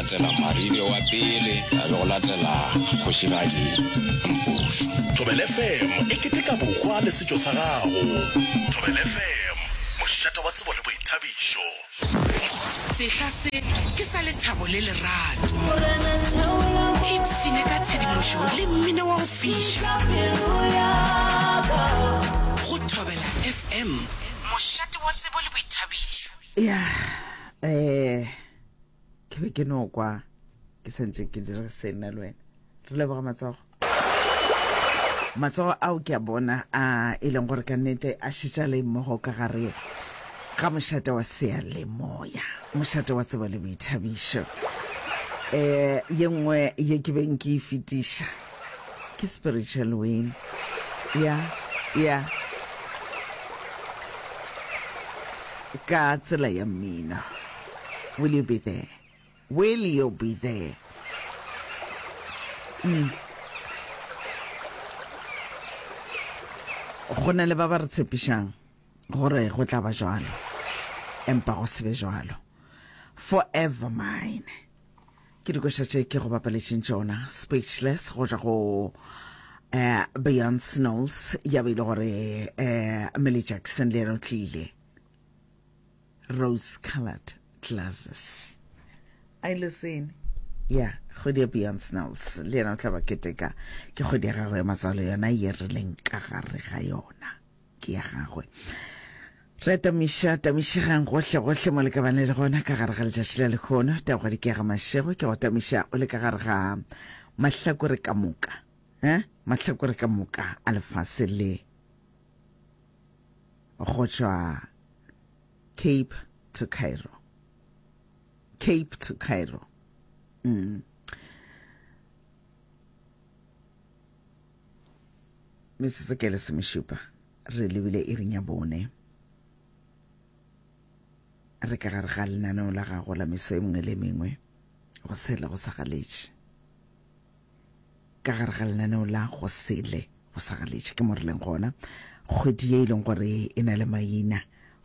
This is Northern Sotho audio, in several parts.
latela Maribe wa pele, a be go latela Kgošigadi Mpošu. Thobele FM e keteka bokgwa le setšo sa gago. Thobele FM, mošate wa tsebo le boithabišo. Sehla se ke sa lethabo le lerato. Ipshine ka tshedimošo le mmino wa go fiša go Thobela FM, mošate wa tsebo le boithabišo. Yeah, eh. ke be ke no kwa ke santse ke dire se nna le wena re leboga matsogo matsogo ao ke a bona a e leng gore ka nnete a šetša le mmogo ka gare ga mošate wa seyalemoya mošate wa tsebo le boithabišo um ye nngwe ye ke beng ke e fetiša ke spiritual win ya ya ka tsela ya mmino Will you be there? Will you be there? Mm. Go na le ba ba re tshepišang gore go tla ba jwalo empa go se be jwalo forever mine ke dikoša tše ke go bapalešeng tšona speechless go ja go um beyond snows ya be e le gore um eh, mele jackson le yena o tlile rose colored glasses a ile sene ya kgwedi ya beyond snells le yena o tla ba keteka ke kgwedi ya gagwe ya matsalo yona ye re leng ka gare ga yona ke ya gagwe re tamiša tamišegang gohle gohle mo le ka bane le gona ka gare ga letšatši la lekgono tagwadi ke ya ga mašego ke go tamiša o le ka gare ga mahlakore ka moka eh mahlakore ka moka a lefase le go tšwa Cape to Cairo. Cape to Cairo. Mm. metsotso ke lesomešupa re lebile e reng ya bone re ka gare ga lenaneo la gago la meso e mengwe le mengwe go sele go sa galetše ka gare ga lenaneo la go sele go sa galetše ke mo re leng gona kgwedi ye e leng gore e na le maina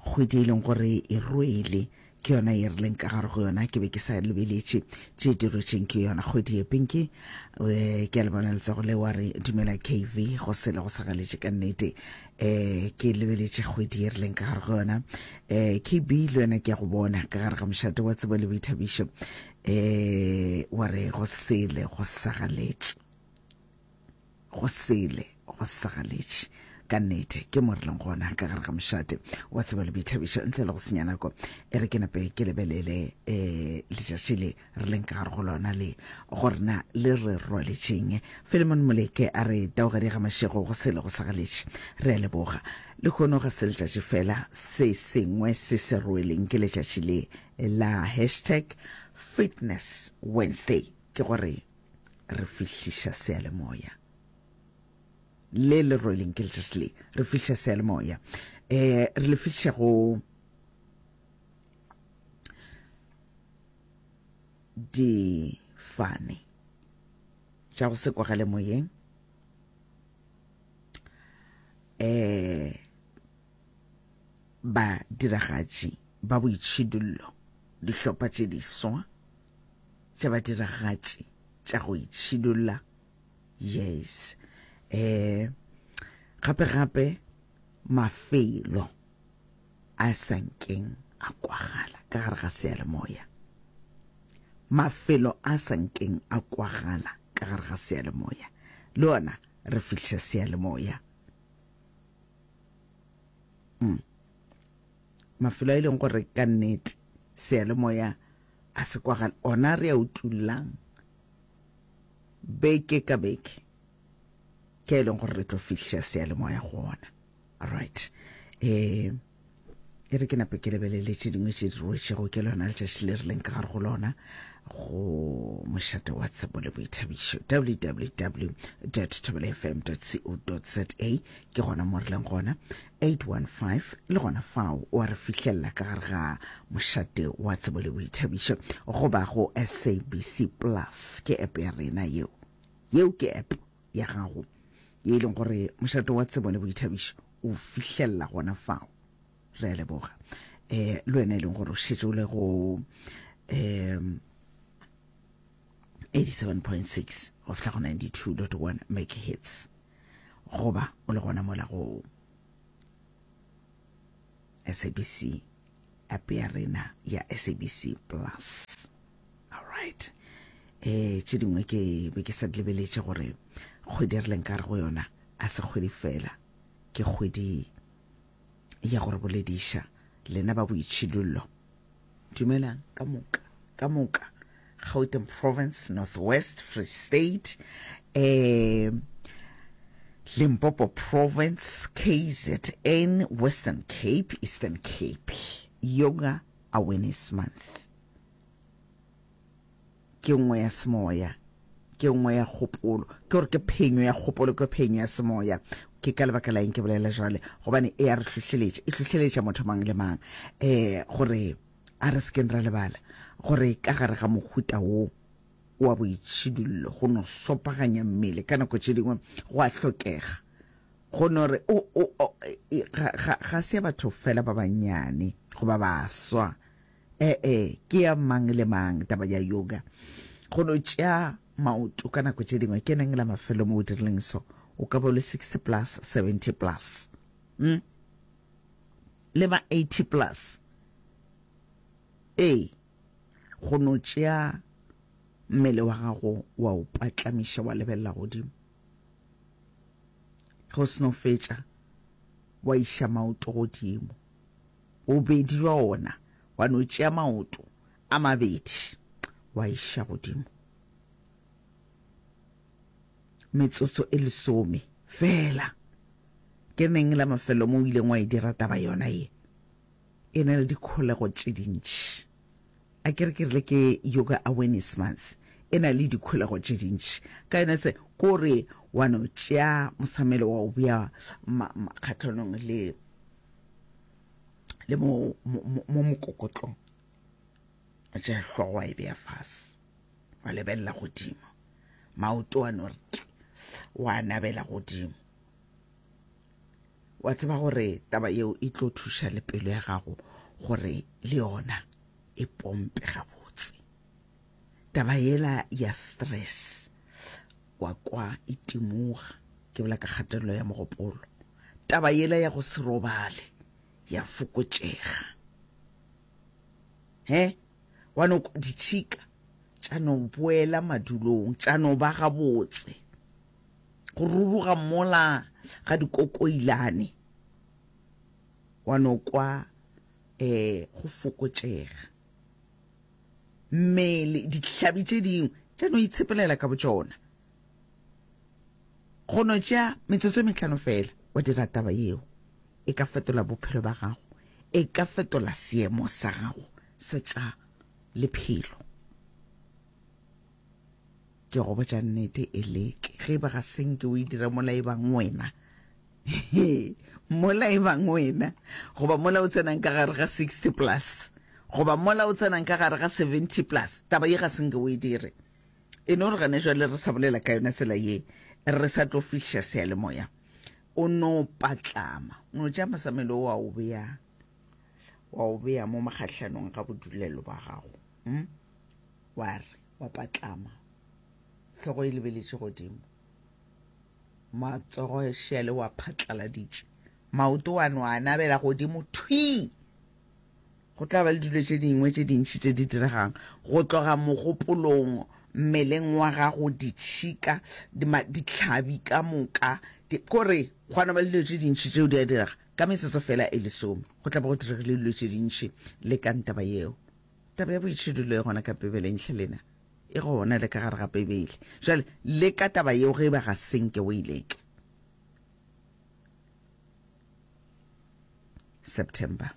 kgwedi e leng gore e rwele ke yona ye re leng ka gare go yona ke be ke sa lebeletše tše di rwetšeng ke yona kgwedi ye pinki um ke a le bona letsogo le wa re dumela kv go sele go sa galetše ka nnete um ke lebeletše kgwedi ye re leng ka gare go yona um kb le wena ke ya go bona ka gare ga mošate wa tsebo le boithabišo eh wa re go sele go sagaletše go sele go sagaletše ka nnete ke mo re leng gona ka gare ga mošate wa tseba le boithabišo ntle le go senya nako e re ke nape ke lebelele um letšatši le re leng ka gare go lona le gore na le re rwaletšeng filemon moleke a re taogadi ga mašego go sele go sagaletše re a leboga le kgono ga se letšatši fela se sengwe se se rweleng ke letšatši le la hashtag fitness wednesday ke gore re fihliša seyalemoya le le rweleng ke letšatši le re fihliša seyalemoya um re le fihliša go difane tša go se kwagale moyeng um badiragatši ba boitšhidullo, dihlopha tše diswa tša badiragatši tša go itšhidulla, yes, um gape gape mafelo a sa nkeng a kwagala ka gare ga seyalemoya mafelo a sa nkeng a kwagala ka gare ga seyalemoya le ona re fihla seyalemoya mm. mafelo a e leng gore ka nnete seyalemoya a se kwagale ona re a utlwullang beke ka beke ke e leng gore re tlo fihla seyalemoya go ona right um e re ke nape ke lebelele tše dingwe tše di roetšego ke lona letšatši le rileng ka gare go lona go mošate wa tsebo le boithabišo www tobelefm co za ke gona mo rileng gona 815 le gona fao wa re fihlelela ka gare ga mošate wa tsebo le boithabišo goba go sabc plus ke app ya rena yeo yeo ke app ya gago ye e leng gore mošato wa tsebo le boithabišo o fihlelela gona fao re a leboga um le wena e leng gore o šetse o le go um 87.6 go fihla go 92.1 megahertz goba o le gona mola go SABC, app ya rena ya SABC Plus. All right. Eh tše dingwe ke be ke sa lebeletše gore kgwedi re leng ka re go yona a se kgwedi fela ke kgwedi ya gore bolediša lena ba boitšhidullo Dumelang ka moka ka moka Gauteng province Northwest Free State eh Limpopo province KZN Western Cape Eastern Cape Yoga Awareness Month ke nngwe ya semoya, ke nngwe ya kgopolo, ke gore ke phenyo ya kgopolo, ke phenyo ya semoya. Ke ka lebaka la eng ke bolela jwale? Gobane e ya re hlohleletša, e hlohleletša motho mang le mang um gore a re sekeng ra lebala gore ka gare ga mohuta wo wa boitšhidullo go no sopaganya mmele ka nako tše dingwe go a hlokega go no re ga se batho fela ba bannyane goba baswa E-e, ke ya mang le mang taba ya yoga. Go no tšea maoto ka nako tše dingwe ke neng la mafelo mo o dirileng so, o ka bo le 60 plus, 70 plus, mm? le ma 80 plus. Ee, go no tšea mmele wa gago wa o patlamiša wa lebelela godimo. Ge o seno fetša wa iša maoto godimo. Bobedi bja ona wa no tšea maoto a mabedi wa iša godimo. Metsotso e lesome fela. Ke neng la mafelo mo o ileng wa e dira taba yona ye? E na le dikholego tše dintši. A ke re ke rile ke Yoga Awareness Month. E na le dikholego tše dintši. Ka yona se ko re wa no tšea mosamelo wa o bea kgahlanong le le mo mo mokokotlong ba tša hlogo wa e beya fase wa lebelela godimo maoto a no re wa nabela godimo wa tseba gore taba yeo e tlo thuša le pelo ya gago gore le yona e pompe gabo taba yela ya stress wa kwa itimuga ke bola ka kgatelelo ya mogopolo taba yela ya go se robale ya fokotšega he wa no ditšhika tša no boela madulong tša no ba gabotse go ruruga mola ga dikokoilane wa no kwa um go fokotšega mmele, dihlabi tše dingwe tša no itshepelela ka botšona. Go no tšea metsotso e metlhano fela wa dira taba yeo, e ka fetola bophelo ba gago, e ka fetola seemo sa gago sa tša lephelo. Ke go botša nnete, Eleke, ge e ba ga se nke o e dira mola e bang wena, mola e bang wena, goba mola o tsenang ka gare ga sixty plus, goba mola o tsenang ka gare ga seventy plus, taba ye ga se nke o e dire. E no re gane jwale re sa bolela ka yona tsela ye, re sa tlo fihliša seyalemoya. O no patlama, o no tšea mosamelo wa o bea, wa o bea mo makgahlanong ga bodulelo ba gago, hm? wa re. ba patlama, hlogo e lebeletše godimo, matsogo šele wa phatlaladitše, maoto wa no a nabela godimo thwi. Go tla ba le dilo tše dingwe tše dintši tše di diregang, go tloga mogopolong, mmeleng wa gago, ditšhika, dihlabi ka moka, kore gwa no ba le dilo tše dintši tšeo di a direga. Ka metsotso feela e lesome go tla ba go diregile dilo tše dintši le ka ntaba yeo. Taba ya boitšhidulo e gona ka Bibeleng hle lena, e gona le ka gare ga Bibele. Jale, le ka taba yeo ge eba ga se nke o e leka. September.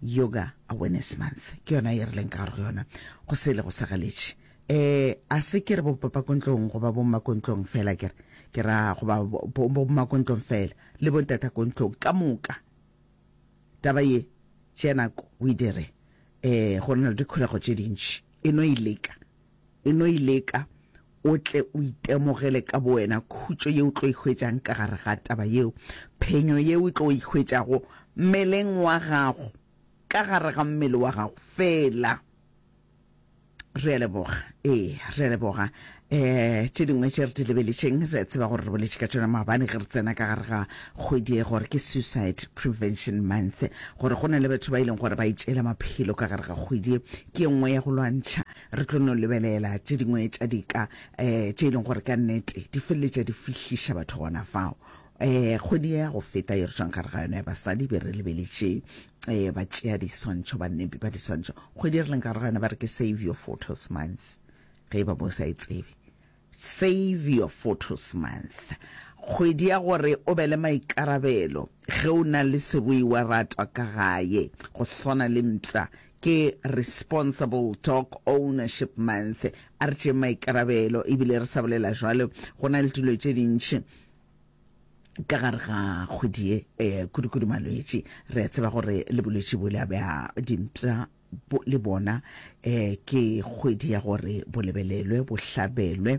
Yoga Awareness Month. Ke yona e re leng ka gare go yona. Go se le go sa galetše. Eh, a se ke re bo papakontlong goba bo makontlong fela ke re. Ke ra goba bo makontlong fela. Le bo ntatakontlong ka moka. Taba ye tšea nako o e dire. Ee, go na le dikholego tše dintši. E no e leka. E no e leka o tle o itemogele ka bowena khutšo ye o tlo e hwetšang ka gare ga taba yeo, phenyo ye o tlo e hwetšago mmeleng wa gago, ka gare ga mmele wa gago feela. Re a leboga. Ee, re a leboga. Eh, tše dingwe tše re di lebeletšeng, re a tseba gore re boletše ka tšona maabane ge re tsena ka gare ga kgwedi e gore ke Suicide Prevention Month, gore go na le batho ba e leng gore ba itšeela maphelo ka gare ga kgwedi e, ke e nngwe ya go lwantšha. Re tlo no lebelela tše dingwe tša dika um tše e leng gore ka nnete di feleletša di fihliša batho gona fao. Ee, kgwedi ya go feta ye re tšwang gare ga yona ya basadi be re lebeletše um ba tšea diswantšho, bannepi ba diswantšho. Kgwedi ye re leng gare ga yona ba re ke Save Your Photos Month, ge e ba mo sa e tsebe. Save Your Photos Month, kgwedi ya gore o be le maikarabelo ge o na le seruiwa ratwa ka gae, go swana le mpša. Ke Responsible Dog Ownership Month, a re tšeeng maikarabelo ebile re sa bolela jwalo go na le dilo tše dintši ka gare ga kgwedi ye eh, kudu-kudu malwetši re a tseba gore le bolwetši bo le a bea dimpša le bona eh ke kgwedi ya gore bo lebelelwe bo hlabelwe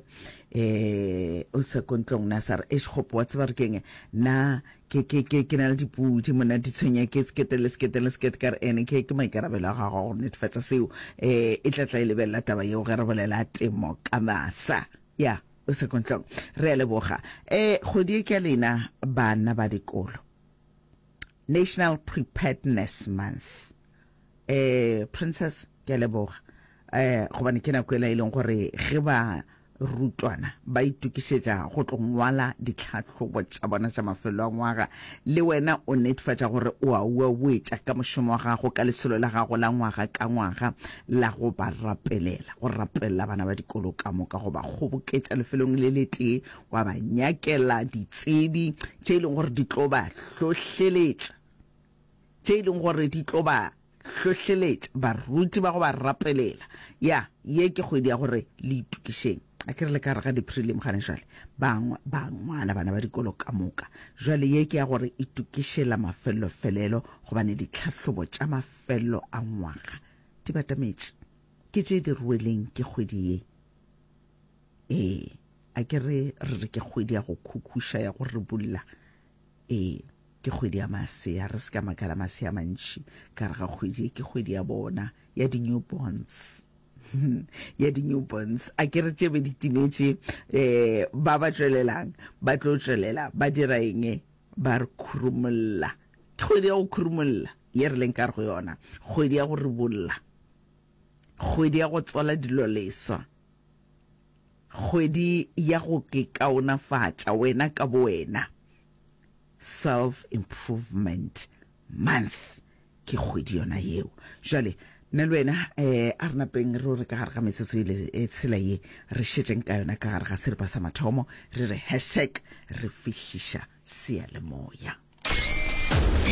eh o se kontlong na sa re e shopo wa tseba re keng na ke ke ke ke na le dipudi mona di tshwenya ke sekete le sekete le sekete ka re ene ke ke maikarabelo a gago go netefatsa seo eh e tla tla e lebella taba yeo ge re bolela temo ka masa ya yeah. Sekontlong. Re a leboga. E, kgwedi e ke lena bana ba dikolo. National Preparedness Month. E, Princess, ke a leboga. E, gobane ke nako ela e leng gore ge ba rutwana ba itukišetša go tlo ngwala ditlhahlobo tša bona tša mafelo a ngwaga le wena o netefatša gore o a uauetša ka mošomo wa gago ka lesolo la gago la ngwaga ka ngwaga la go ba rapelela, go rapelela bana ba dikolo ka moka, go ba kgoboketša lefelong le letee, wa ba nyakela ditsebi tše e leng gore di tlo ba hlohleletša, tše e leng gore di tlo ba hlohleletša, baruti ba go ba rapelela. Ya, ye ke kgwedi ya gore le itokišeng. a ke re le ka re ga di-prelim gane jale bangwe ba ngwala bana ba dikolo ka moka jale ye ke ya gore e tukišela mafellofelelo gobane ditlhahlobo tša mafello a ngwaga di batametše ke tše di rweleng ke kgwedi ye ee a ke re re re ke kgwedi ya go khukhuša ya go re bulla Ee, ke kgwedi ya masea. Re se ka makala masea mantši ka re ga kgwedi e. Ke kgwedi ya bona, ya di-newborns. ya di-newborns a ke re tšebe di timetše um ba ba tšwelelang ba tlo tšwelela ba dira eng ba re khurumolola ke kgwedi ya go khurumolola ye re leng ka re go yona kgwedi ya go ribolola kgwedi ya go tsola dilo leswa Kgwedi ya go ikaonafatša wena ka bowena, Self Improvement Month, ke kgwedi yona yeo. Jwale, nna le wena um a re napeng re o re ka gare ga metsotso e le e tshela ye, re šetšeng ka yona ka gare ga seripa sa mathomo, re re hashtag re fihliša seyalemoya.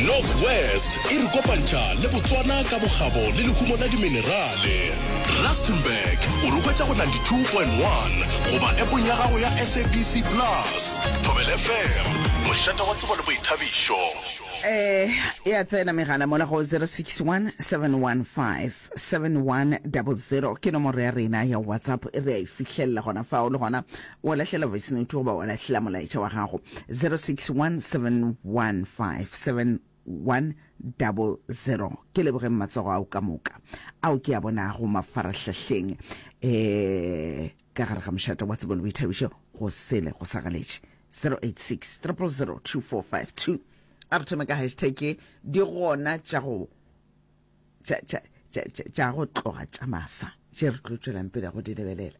North West e re kopantšha le Botswana ka bokgabo le lehumo la diminerale. Rustenburg o re hwetša go 92.1 goba epong ya gago ya SABC Plus. Thobela FM, mošate wa tsebo le boithabišo. E e a tsena megala mola go 0617157100 ke nomoro ya rena ya WhatsApp e re a e fihlelela gona fao le gona Wa lahlela voice note goba wa lahlela molaetša wa gago 0617157100. Ke lebogeng matsogo ao ka moka ao ke a bonago mafarahlahleng eh ka gare ga mošate wa tsebo le boithabišo go sele go sa galetše 086 0002452 a re thome ka hashtag di gona tša go tša go tloga tša masa tše re tlo tšwelang pele go di lebelela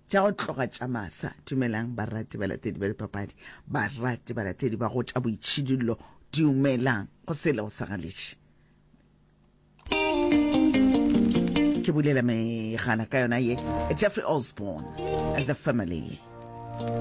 tša go tloga tša masa dumelang barati balatedi ba dipapadi barati balatedi ba go tša boitšhidillo dumelang go sele go sagaleše ke bulela megala ka yona ye jeffrey osborne the family